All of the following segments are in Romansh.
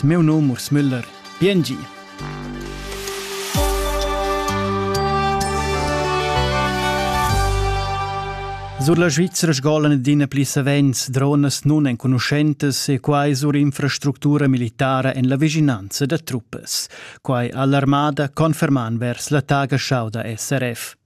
Meu num Urs Müller. Biengi. Sur la Svizzera sgolan adina pli savens dronas nun enconuschentas e quai sur infrastructura militara en la vischinanza da truppas. Quai ha l'armada conferman vers la taga-schauda SRF.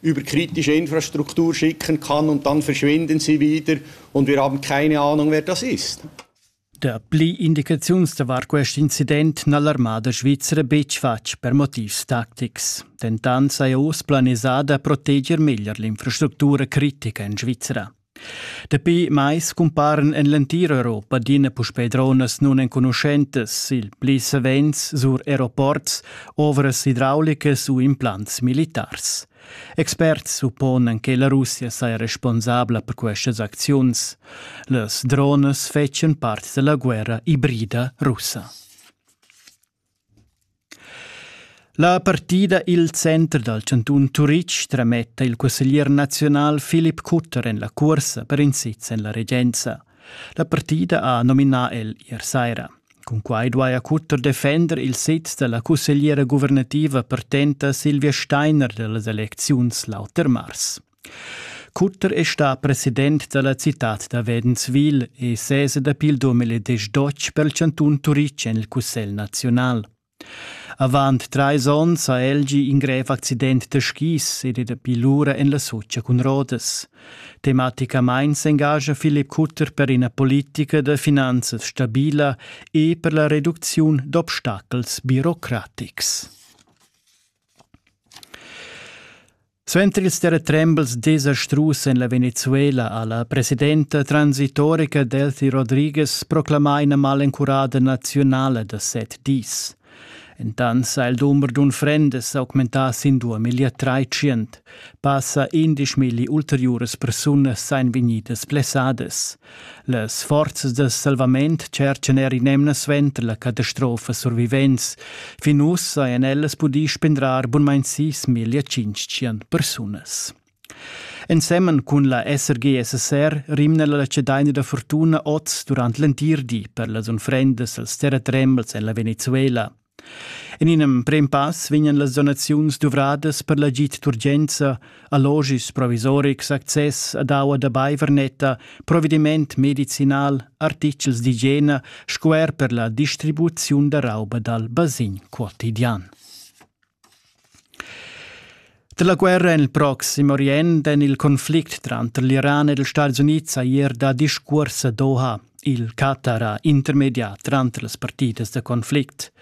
über kritische Infrastruktur schicken kann und dann verschwinden sie wieder und wir haben keine Ahnung, wer das ist. Dapli Indikations war questo incident nall'armada svizra betg fatg per motivs tactics. Dentant sei oz planisada proteger meglier l'infrastructura critica in Svizra. Dapi mais cumparan en l'entira Europa adina puspè dronas nunenconuschentas, il pli savens sur aeroports, ovras idraulicas u implants militars. Experts supponan che la Russia saja responsabla per questas acziuns. Las dronas fetschan part da la guerra ibrida russa. La partida i'l center dal chantun Turitg trametta il cusseglier naziunal Filip Kutter en la cuorsa per in sez en la regenza. La partida ha nominà el ier saira. Cun quai duaja Kutter defender il sez da la cussegliera guvernativa partenta Silvia Steiner da las elecziuns l'auter mars. Cutter è stà president da la citad da Wedenswil e sesa dapi il 2012 per il chantun Turitg en il Cussegl naziunal. Avant trais onns ha Elgi in grev accident da skis ed è dapi lura en la Socia cun Rodas. Tematicamain s'engascha Philipp Cutter per ina politica da finanzas stabila e per la reducziun d'obstacels birocratics. Suenter ils terratrembels desastrus en la Venezuela ha la presidenta transitorica Delfi Rodriguez proclamà ina malencurada naziunala da set dis. Entant ha il dumber d'unfrendas augmentà sin 2300. Passa 11 milli ulteriuras persunas èn vegnidas blessadas. Las forzas da salvament tscherchan er in'emna suenter la catastrofa survivents. Fin uss hajan ellas pudì spendrar bunmain sis miglia tschintg persunas. Ensemen cun la SRGSSR rimna la cedaina da fortuna oz durant l'entir di per las unfrendas als terratrembels en la Venezuela. En in emprim pass vegnan las donaziuns duvradas per l'agid d'urgenza, allogis provisorics, access ad aua da baiver netta, provediment medicinal, artitgels d'igiena sco er per la distribuziun da rauba dal basegn quotidian. Dalla guerra en il Proxim Orient en il conflict tranter l'Iran ed ils Stati Unids ha ier dà discuors a Doha, il Qatar intermediar tranter las partidas da conflict.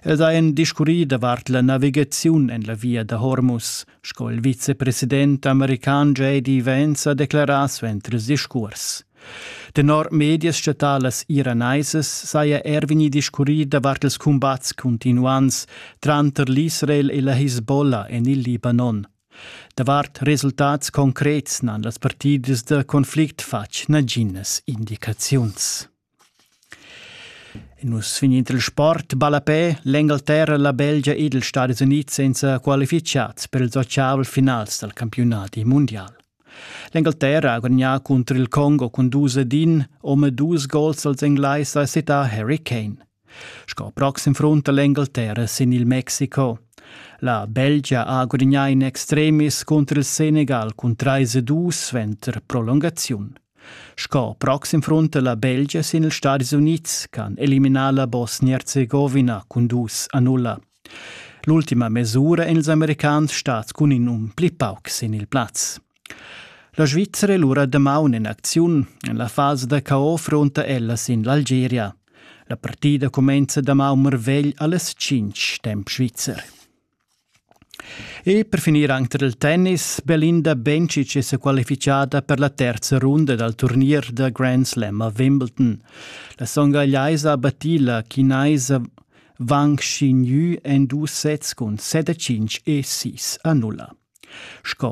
Ed ha en discurri davart la navigaziun en la via da Hormuz, sco il vicepresident american J.D. Vance ha declarà suenter il discurs. Tenor medias statalas iranaisas saja er vegnì discurrì davart ils cumbats cuntinuants tranter l'Israel e la Hisbollah en il Libanon. Davart resultats concrets n'han las partidas da conflict fatg naginas indicaziuns. Nus vegnin il sport ballapè, l'Engalterra, la Belgia ed ils Stati Unids senza qualificads per ils otgavel finals dal campiunadi mundial. L'Engalterra ha gudagnà cunter il Congo cun dus ed in, omadus gols als Englais ha settà Harry Kane. Sco proxim frunta l'Engalterra sin il Mexico. La Belgia ha gudagnà in extremis cunter il Senegal cun 3-2 suenter prolungaziun. Sco proxim frunta la Belgia sin ils Stadis Unids, che han eliminà la Bosnia-Herzegovina cun 2-0. L'ultima mesura èn ils Americans stads cun in um pli pauc sin il plaz. La Svizzera è lura damaun en acziun en la fasa da chaos frunta ella sin l'Algeria. La partida cumenza damaun marvegl alles tschintg temp svizzer. E per finir anche il tennis, Belinda Bencic è qualificata per la terza runda dal turnier da Grand Slam a Wimbledon. La songagliaisa ha battì la chinaisa Vanc schignü en dus sezs cun set e tschinch e sis annulla. Sco